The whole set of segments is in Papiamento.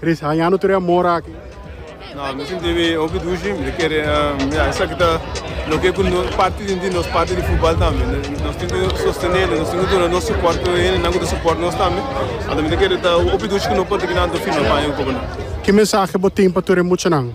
Riz, hañando tur e amor aki? No, mi sinti mi hopi dushi. Mi ta kere, ya, esaki ta loke ku nos parti di nos parti di futbal tambe. Nos tin ku sostenele, nos tin ku duna nos soport ku hende ku ta soport nos tambe. Anto mi ta kere ta hopi dushi ku no por ta kina anto firma paña ku kobonan. Ki mensahe bo tin pa tur e muchanan?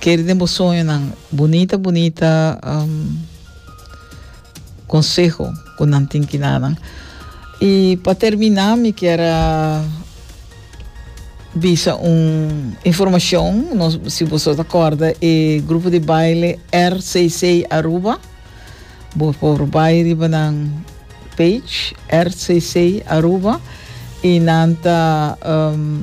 Keri den bo soñonan. Bunita bunita um, conseho cu nan tin ki danan. Y pa termina mi kier a bisa un informacion, no si boso ta corda e grupo di baile RCC Aruba, bo por bai riba nan page RCC Aruba y nan ta um,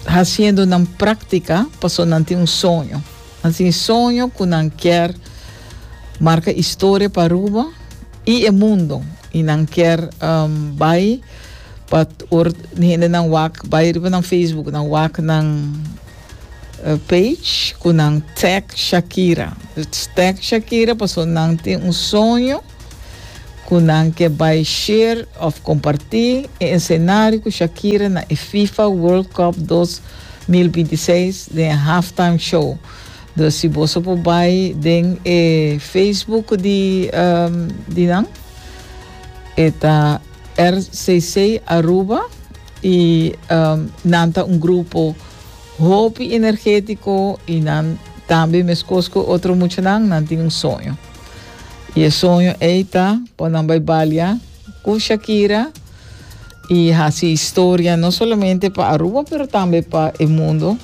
Haciendo nan práctica paso nan tin un soño. Nan tin soño cu nan kier marca historia pa Aruba y e mundo. Y nan kier um, bay pa or hende nan wak, bay riba nan Facebook, nan wak nan uh, page cu nan tag Shakira. Tag Shakira paso nan tin un soño ku nan ke bai share òf kompartí e esenario ku Shakira na e fifa World Cup dos mil binti i seis den e halftime show. Dus si boso por bai den e Facebook di di nan e ta RCC Aruba i nan ta un grupo hopi energétiko i nan tambe meskos ku otro muchanan nan tin un soño. Y e soño ey ta pa nan bay balia cu Shakira y haci historia no solamente pa Aruba pero tambe pa e mundo.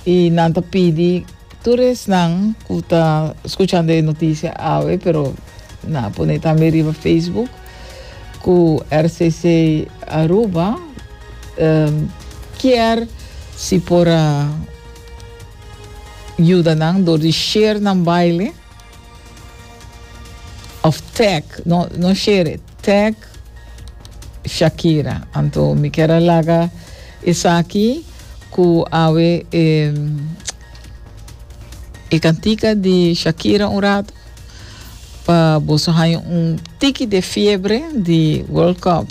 Y nan ta pidi tur esnan cu ta scuchando e noticia awe pero na pone tambe riba Facebook cu RCC Aruba um, kier si por a yuda nan door di share nan baile. Of tag, no, no share, tag Shakira. Anto mi kier a laga esaki cu awe e, e cantica di Shakira un rato pa boso haya un tiki de fiebre di World Cup.